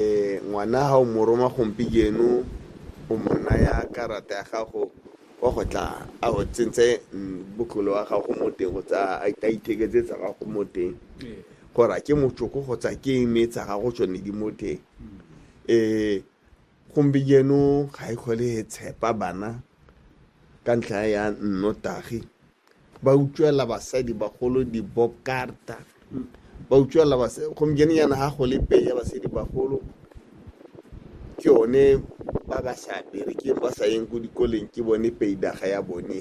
Ngwana ga o mo roma gompieno o mo naya karata ya gago wa go tla a o tsentse botlolo wa gago mo teng go tsa a itheketse tsa gago mo teng gore a ke motšoko go tsa ke eme tsa gago tsone di mo teng um gompieno ga e kgole e tshepa bana ka ntlha ya nnotagi ba utswela basadi bagolo dibokarta ba utswela basadi gompieno yana ga go le peye basadi bagolo ke yone ba ba sa berekeng ba sa yeng ko dikoleng ke bone peidaga ya bone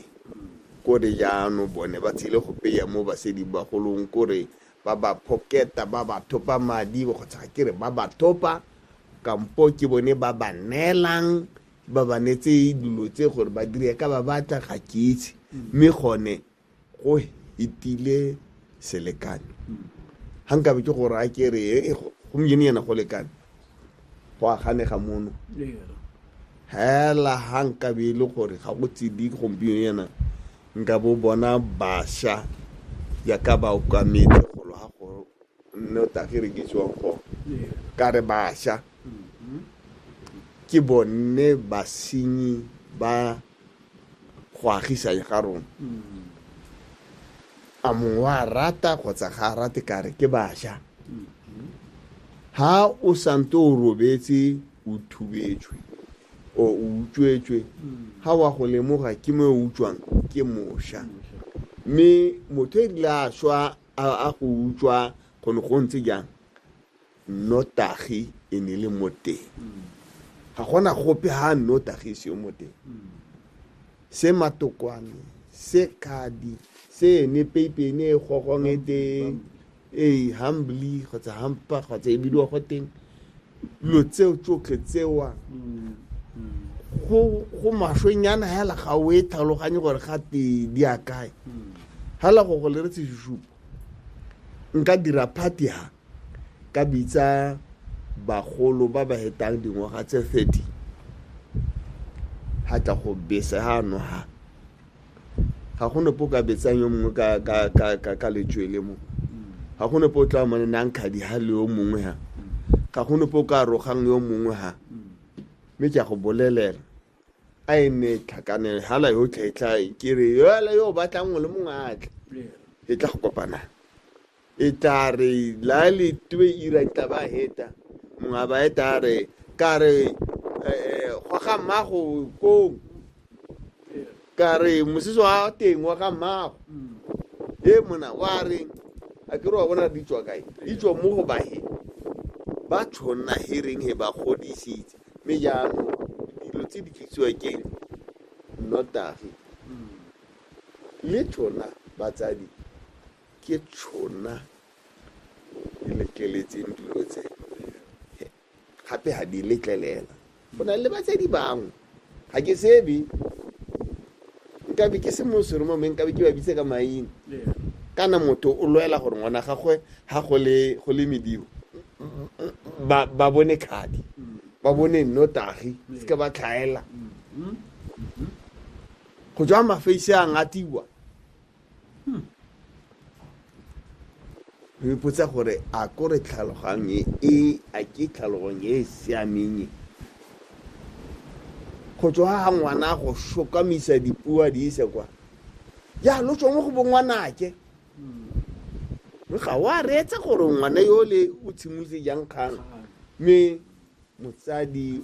kore jaano bone ba tshele go peya mo basadi bagolong kore ba ba phoketa ba ba thopa madi kgotsa ke re ba ba thopa kampo ke bone ba ba neelang ba ba netse dilo tse gore ba dire ka ba batla ga ke itse mme gone go itile selekano ga nkabe ke gore a ke re eh, go- gompieno yana go lekane go aganega mono hela ga nkabe e le gore ga go tsedi gompieno yana nka bo bona basha yaka ba okametse golo ga go mme o tla kere ke tswa go ka re basha ke bone basenyi ba go agisang ga rona a mongwe wa rata kgotsa ga a rate kare ke basha ha o sante o robetse o thubetswe o o utswetswe ha wa go lemoga ke mo o utswang ke mosha mme motho e rile a swa A go utswa go ne go ntse jang? Nnotagi e ne le mo teng. Ga gona gope ha nnotagi e seyo mo teng. Se matokwane, se kadi, se ene peipe ene e gogong e teng, ee, humbly kgotsa hampa kgotsa e bidiwa go teng. dilo tseo tsotlhe tsewa go maswenyana hela ga o e tlhaloganye gore ga te di a kae hela go go le re tseshupo nka dira party ha ka bitsa bagolo ba ba hetang dingwaga tse 30 ha tla go bese ha no ha ga go nope o ka betsang yo mongwe ka, ka, ka, ka, ka letswele mo ga go nope o tla mone nang kgadi ga le yo mongwe ha ga go nope o ka rogang yo mongwe ha mme ke a go bolelela a e nne e tlhakanele hala yotlhe e tla ke re yoela yo o batlang ngwe le mongwe a tle e tla go kopanang E tla re la le twe ira tla ba heta mwa ba e tla re ka re eh go ga mmago ko ka re mosese wa teng wa ga mmago e mona wa re a ke re wa bona di tswa kae di tswa mo go bahe ba tshonna hereng he ba godisitse mme jaanong dilo tse di tlisiwa ke nnotagi le tshona batsadi Ke tšhona di letleletseng dilo tse gape ga di letlelela go na le batsadi bangwe ga ke sebe nkabe ke se mosore mo mme nkabe ke ba bitse ka maina kana motho o lwela gore ngwana gagwe ga go le medibo ba bone kgadi ba bone nnotagi se ka ba tlhaela go tswa mafeise a ngatiwa hmm. o ipotsa gore a kore tlhalogang e, e a ke tlhalogong e e siameng e go tswa ga ngwana go shokamisa dipua di ise kwa ya lo tswa mo go bongwanake hmm. ga wa reetsa gore ngwana yo le o tshimotse jang kgang mme motsadi